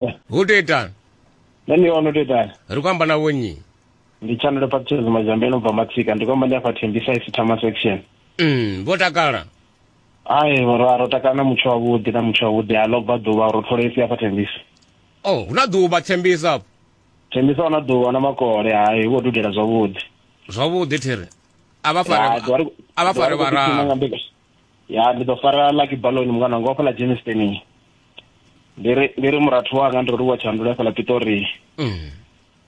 ho tou itani nṋe ndi ono tou itani ri khou amba na vhonnyi ndi tshanelo baptism mazambe no bva matsika ndi khou amba ndi afha thembisa isithama section mm vho takala ai ra ro takala na mutsho wavhuḓi na mutsho wavhuḓi a ḽo bva ḓuvha ro tholesi afha thembisa oh hu na ḓuvha thembisa afho thembisa hu na ḓuvha na makole hai hu khou dudela zwavhuḓi zwavhuḓi thiri a vha fare a vha fare vharalo ya ndi ḓo fara lucky balon mungana wanga wa fhala jamestoning ndi ri ndi ri murathu wanga ndi ri wa tshandula ya fhala pitori Mm.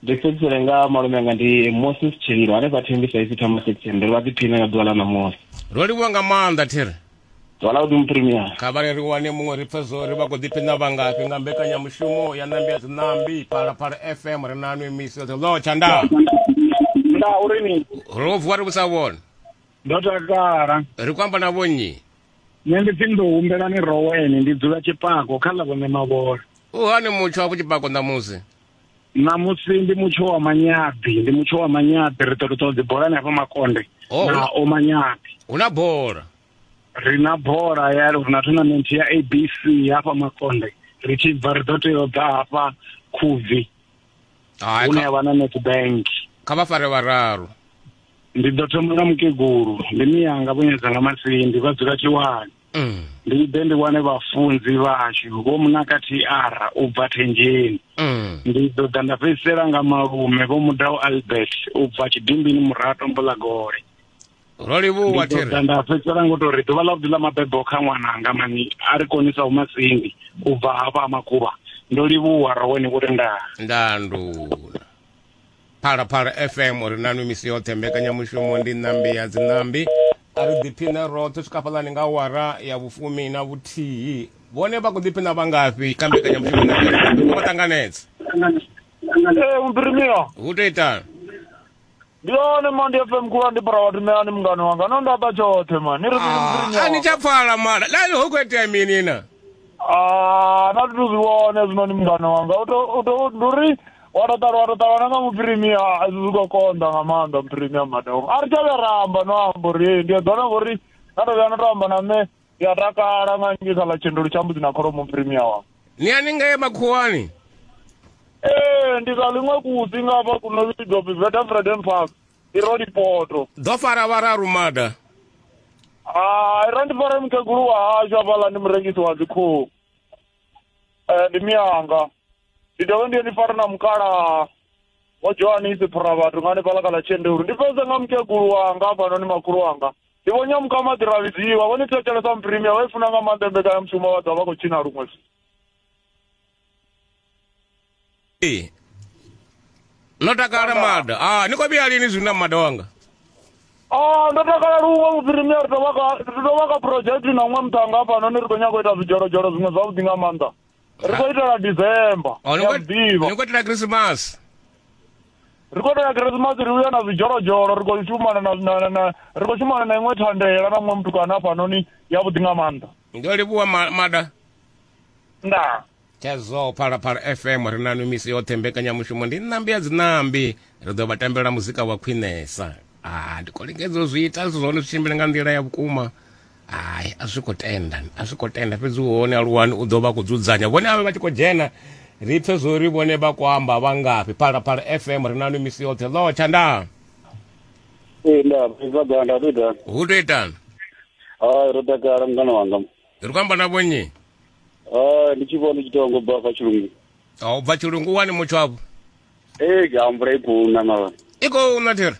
ndi fhedzisele nga malume anga ndi moses tshililo hanefha thembi saisi thama section ndi ri vha ḓiphine nga ḓuvha ḽa ṋamusi ro livhuwa nga maanḓa thiri zwala u dimuprimiya kha vhale ri wane muṅwe ri pfe zwo ri vha khou ḓiphina vhangafhi nga mbekanyamushumo ya nambi ya dzinambi phalaphala fm ri na nwe misi yoṱhe lo tshandaa nda uri ni ro vuwa ri vhusa vhona ndo takala ri khou amba na vho nnyi nṋe ndi pfi ndo humbela ni roweni ndi dzula tshipako kha ḽa vhone mavhola u hani mutsho wa vhutshipako ṋamusi ṋamusi ndi mutsho wa manyabi ndi mutsho wa manyabi ri ṱoḓa ṱoḓa dzibolani hafha makonde oh, na o manyabi hu na bola ri na bola ya ri na tournament ya abc hafha makonde ri tshi bva ri ḓo tea u ḓa hafha khubvi hai hune kha- yavha na netbank kha vha fare vhararu ndi ḓo thoma nga mukegulu ndi miyanga vhunyedza nga masindi vha dzula tshiwani Mm, ndi ḓe ndi wane vhafunzi vhashu vho munaka tr u bva thenjeni mm. ndi ḓo ḓa nda fhedzisela nga malume vho mudau albert u bva tshidimbini murato mbulagole ro livhuwa ndi ḓo thiri ḓa nda fhedzisela ngo tou ri ḓuvha ḽa vhuḓi ḽa mabebo kha ṅwananga mani a ri konisa u masindi u bva hafha ha makhuvha ndo livhuwa ra wene vho tendaa ndanduna phalaphala fm ri nanwi misi yoṱhe mbekanyamushumo ndi ṋambi ya dziṋambi a ri ḓiphine roṱhe swika fhaḽani nga awara ya vhufumi na vhuthihi vhone vha khou ḓiphina vha ngafhi kha mbekanyamushumo ine vha- vha ṱanganedza ee mupirimiwa hu tou itani ndi hone ma ndi fm khulu andibora vhathu ṋeani mungano wanga no ndaba tshoṱhe ma ni ri ah, a ni tsha pfala mala lani ho khou itea mini na ah, na zwithu zwi vhone zwino ni mungano wanga ndi uri wa to ṱalwa wa to ṱalwana nga muphirimia a zwi zwi khou konḓa nga maanḓa muphirimia madongo a ri tsha vhe ramba no amba uri ndi eḓona ngori na to vhuya na to amba na nṋe ndi a takala nga nge kha ḽa tshendelo tsha mbudzi na kholomo mphirimi ya wanga ni haningei makhuwani ee ndi sa ḽiṅwe kusi nga hafha kuno vhidzwa pfi vetafreden park i ro lipoto ḓo fara vhararu mada hai ra ndi fara mukegulu wa hashu hafhaḽa ndi murengisi wa dzikhuhu um ndi miyanga ndi dovhe ndi ye ndi fare na mukalaha wa johanisi phura vhathu nga hanefhaḽa kha ḽa tshendelo ndi fhedze nga mukegulu wanga hafhanoni makhulu wanga ndi vho nyamuka maḓi ra vhidziwa vhone thetshelesa muprimia vha i funa nga maanḓa mbekanyamushumo vha ḓa vha khou tshina luṅwe Ee. no takala mada ah ni khou vhuya lini zwino na mada wanga Ah, ndo takala luṅwe muprimia ri tovha ka ri tovha ka project na ṅwe muṱhanga hafhano ni ri khou nyanga u ita zwidzholozholo zwiṅwe zwavhuḓi nga maanḓa ri khou itela december Oh, ni ya khou- muḓivha ni khou itela khrisimasi ri khou itela khirisimasi ri uya na zwidzholodzholo ri khou shumana na- na- na- na- ri khou shumana na iṅwe thandela na muṅwe mutukana hafhanoni yavhuḓi nga maanḓa ndo livhuwa ma- mada ndaa Chazo Phalaphala FM ri na misi yoṱhe mbekanyamushumo ndi ṋambi ya dziṋambi ri ḓo vha tambela muzika wa khwinesa ah ndi khou lingedza u zwi ita zwithu zwa hone zwi tshimbile nga nḓila ya vhukuma hai a zwi khou tenda a zwi khou tenda fhedzi hone aluwani u ḓo vha khou dzudzanya vhone avhe vha tshi khou dzhena ri pfe zwo ri vhone vha khou amba vha ngafhi phalaphala fm ri nanu misi yoṱhe ḽo tshandaa ee nda bva ganda hu tou itani hu tou itani hai ro takala mungana wanga ri khou amba na vhonnyi hai ndi tshi vhona ndi tshi tou ngo bva fa tshilungu a u bva tshilungu wani mutsho avho ee ga mvula i khou na mara i khou na thiri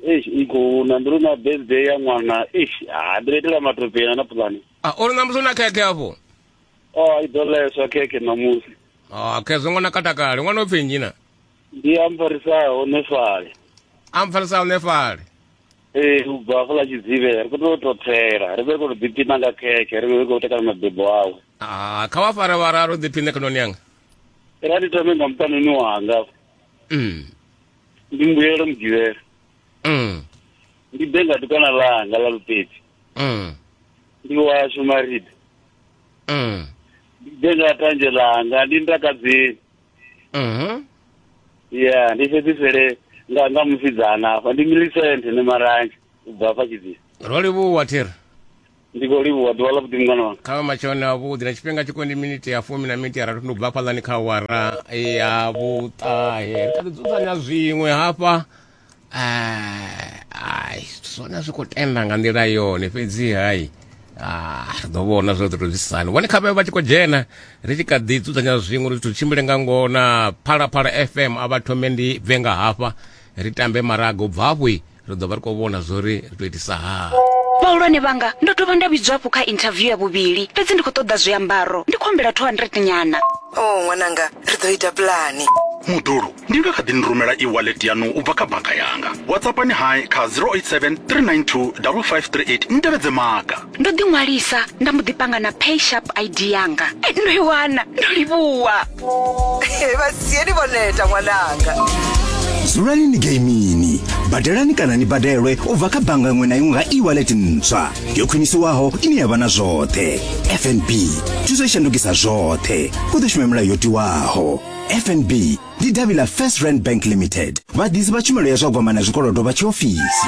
eish iko na ndo na birthday ya ṅwana eish ha ndo itela matope na na pulani a uri na musi na khekhe afho oh i ḓo leswa khekhe ṋamusi a khezwo ṅwana katakale ṅwana upfi nnyi na ndi amfarisaho nefale amfarisaho nefale ee u bva afho ḽa tshidzivhe ri khou tou tou tsela ri vhe ri khou tou ḓiphina nga khekhe ri vhe ri khou tekana mabebo awe a kha vha fare vhararu ḓiphine khononi yanga ra ndi thome nga muṱanoni wanga mm. ndi mbuyelo mugivhela mm. ndi ḓe nga dukana ḽanga ḽa lupedzi mm. ndi washu marida mm. ndi ḓe nga tanzhe ḽanga ndi ndakadzeni mm -hmm. ya ndi fhedzisele nga nga musidzana afha ndi milisente ne maranzhe u bva afha tshidzini ro livhuwa thiri ndi khou livhuwa ḓuvha ḽa vhuḓi mungana wanga kha matshone avhuḓi na tshifhinga tshi kondi miniti ya fumi na miniti ya rathu ndi u bva fhaḽani kha wara ya vhuṱahe ri kha ḓi dzudzanya zwiṅwe hafha eh, ai zwithu zwone zwi khou tenda nga nḓila yone fhedzi hai ah, ri ḓo vhona zwo ḓo tou zwisani vhone kha vhavhe vha tshi khou dzhena ri tshi kha ḓi dzudzanya zwiṅwe uri zwithu tshimbile nga ngona phalaphala fm a vha thome ndi bve nga hafha ri tambe maraga u bva hafho ri ḓo vha ri khou vhona zwo ri ri tou itisa haa vhahulwane vhanga ndo dovha nda vhidzwa hafhu kha interview ya vhuvhili fhedzi ndi khou ṱoḓa zwiambaro ndi khou humbela 200 nyana o oh, ṅwananga ri ḓo ita pulani mudulu ndi nga kha ḓi ni rumela e-wallet yanu u bva kha banga yanga whatsappani hai kha 087 392 5538 ni tevhedze maga ndo ḓi ṅwalisa nda mbo ḓi panga na pay sharp id yanga eh, ndo i wana ndo livhuwa vhasieni vho neta ṅwananga dzulani ni geimini badelani kana ni badelwe u bva kha bannga iṅwe na iṅwe nga e-wallet ntswa yo khwinisiwaho ine ya vha na zwoṱhe fnb thuso i shandukisa zwoṱhe u ḓo shuma milayo yo tiwaho fnb ndi davhi ḽa first rand bank limited vhaḓisi vha tshumelo ya zwa gwama na zwikolodo vha tshiofisi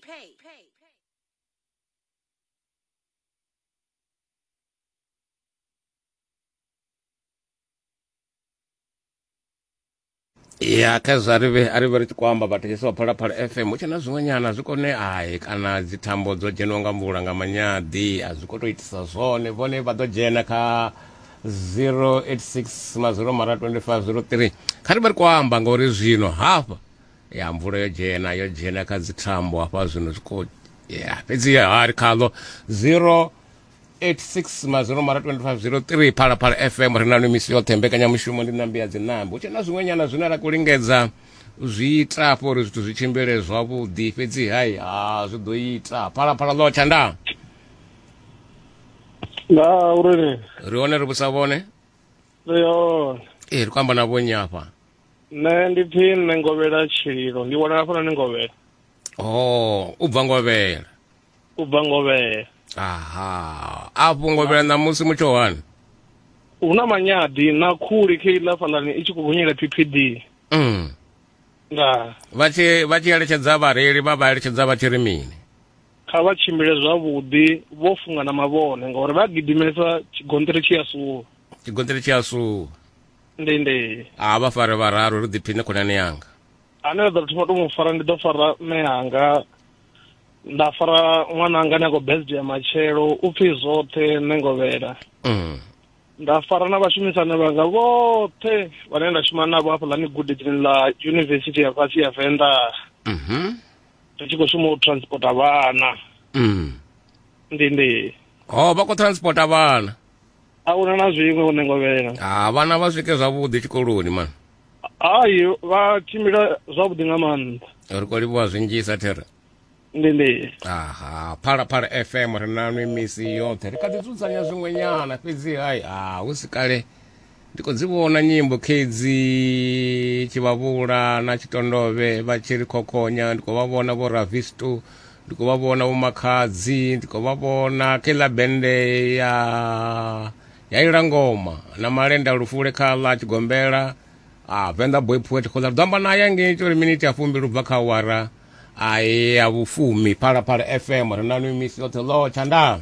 pay. pay. ya kha zwa ri vhe- a ri vhe ri tshi khou amba vhathetshelesi vha phalaphala fm hu tshe na zwiṅwe nyana zwi kone ai kana dzithambo dzo dzheniwa nga mvula nga manyadi a zwi khou tou itisa zwone vhone vha ḓo dzhena kha 086 mazero mara 25 03 kha ri vhe ri khou amba ngauri zwino hafha ya mvula yo dzhena yo dzhena kha dzi thambo hafha zwino zwi khou ya fhedzi ha ri khaḽo 086 mazero mara 2503 phalaphala fm ri nanu misi yoṱhe mbekanyamushumo ndi nambi ya dzinambo hu tshe na zwiṅwe nyana zwine ra khou lingedza u zwi ita afho uri zwithu zwi tshimbile zwavhuḓi fhedzi hai ha zwi ḓo ita phalaphala ḽo tshandaa nga uri ri hone ri vhusa vhone ri hone ee ri khou amba na vhonyi afha nṋe ndi pfi nṋe ngovhela tshililo ndi wanala hafhana ni ngovhela oh u bva ngovhela u bva ngovhela aha afho ngovhela ṋamusi mutsho wani hu na manyadi na khuli khe iḽa fhaḽani i tshi khou gonyela ppd mm. nga vha tshi vha tshi eletshedza vhareili vha vha eletshedza vha tshi ri mini kha vha tshimbile zwavhuḓi vho funga na mavhone ngauri vha gidimesa tshigonṱiri tshi a suwa tshigonṱiri tshi a suwa ndi ndi a vha fare vhararu ri ḓiphine khonani yanga ane a ḓo thoma to mu fara ndi ḓo fara mme anga nda fara ṅwana anga ni a khou birthday matshelo u pfhi zwoṱhe nṋe ngovhela mm. nda fara na vhashumisani vhanga vhoṱhe vhane nda shuma navho hafha ḽani gudedzini ḽa yunivesithi ya fhasi ya venḓa mm -hmm. ri tshi khou shuma u transporta vhana mm. ndi ndi o oh, vha khou transporta vhana a hu na na zwiṅwe hune ngo vhela ha vhana vha swike zwavhuḓi tshikoloni mani hayi vha tshimbila zwavhuḓi nga maanḓa ri khou livhuwa zwinzhisa thera ndi ndi aha phalaphala fm ri nanwi misi yoṱhe ri kha ḓi dzudzanya zwiṅwenyana fhedzi hayi ha hu si kale Ndi khou dzi vhona nyimbo khedzi Tshivhavhula na Tshitondovhe vha tshi ri khokhonya, ndi khou vha vhona vho Ravistu, ndi khou vha vhona vho Makhadzi, ndi khou vha vhona kha iḽa bende ya ya ila ngoma na malenda lufule kha ḽa Tshigombela a Venḓa Boy Poet khoḓa ri ḓo amba naye ngei tsho ri miniti ya fumbili ubva kha awara a ya vhufumi Phalaphala FM ri na nwi misi yoṱhe ḽo tshanḓa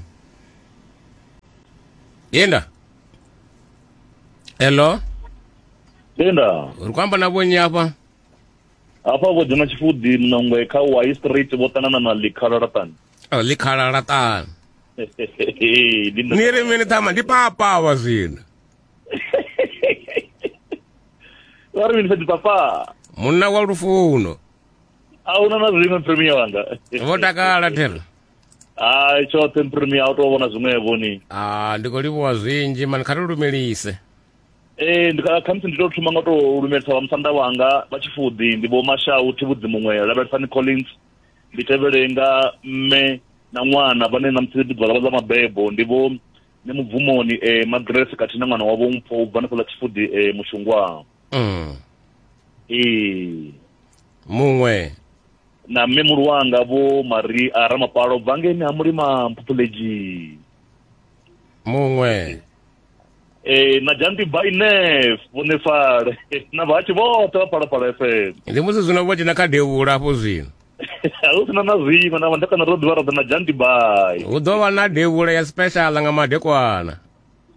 yenda hello tenda uri kwamba na vhonyi hafha hafha vho dzhena tshifuḓi mnongwe kha y street vho ṱanana na likhalalatani oh, likhalalatani ni ri mini thama ndi papava zwino vha ri mini fhedzi papa munna wa lufuno a huna na zwiṅwe premier wanga vho takala thera hai tshoṱhe mpirimi a u tou vhona zwiṅwevho ni a ndi khou livhuwa zwinzhi mani kha ri lumelise ee khamusi ndi tou thoma nga tou lumelisa vha musanda wanga vha tshifuḓi ndi vho mashau thivhudzi muṅwe lavhelesani collins ndi tevhele nga mme na ṅwana vhane na musi ḓuvha ḽavha ḽa mabebo ndi vho ne mubvumoni um eh, magrese khathihi na ṅwana wavho mpho u bva hanefho ḽa tshifuḓi um eh, mushungwaa mm. ee muṅwe na mme mulu wanga vho mari a ramapalo bva ngeni ha mulima mphuphuledzi muṅwe e na jandi by nef vhonefale na vhatshi vhoṱhe vha phalaphala fm ndi musi zwino vho dzhena kha devhula hafho zwino hu sina na zwino na vhandekana ro ḓivha roḓa na jandi by hu ḓo vha na devhula ya special nga madekwana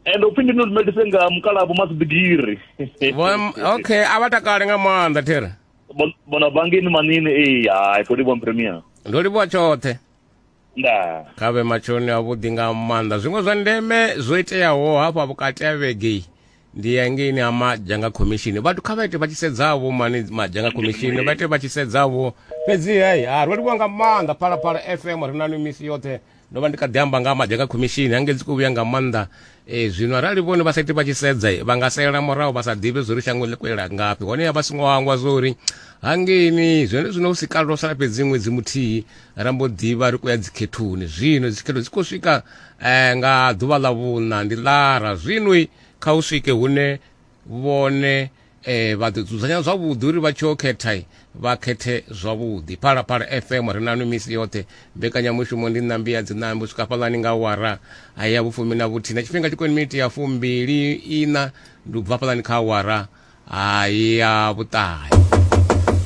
and upfi ndi nolumelise nga mukalabo masidgiri okay a vha takale nga maanḓa thera Bon- bona bangini manini ee hai kodi bon premier ndo livhuwa tshoṱhe nda kha vhe matshoni avhuḓi nga maanḓa zwiṅwe zwa ndeme zwo iteaho hafha vhukati ha vhege ndi ya ngeini ha madzhanga khomishini vhathu kha vha ite vha tshi sedzavho mani madzhanga khomishini vha ite vha tshi sedzavho fhedzi hei ha ro livhuwa nga maanḓa phalaphala fm ri na ni misi yoṱhe ndo vha ndi kha ḓi amba nga maḓi kha khomishini hange dzi khou vhuya nga maanḓa e, zwino arali vhone vha sa iti vha tshi sedza vha nga salela murahu vha sa ḓivhe zwo ri shango ḽi khou yela ngafhi hone ya vha songo hangwa zwo uri hangeini zwone zwino hu si kale ro sala fhedzi ṅwedzi muthihi ra mbo ḓivha ri khou ya dzikhethoni zwino dzikhetho dzi khou swika um nga ḓuvha ḽa vhuṋa ndi lara zwinoi kha u swike hune vhone eh vha ḓo dzudzanya zwavhuḓi uri vha tshi o khetha vha khethe zwavhuḓi phalaphala fm ri nanu misi yoṱhe mbekanyamushumo ndi ṋambi ya dziṋambi u swika fhaḽani nga wara ya vhufumi na vhuthihi na tshifhinga tshi koni miniti ya fumbili iṋa ndi u bva fhaḽani kha wara ya vhuṱahe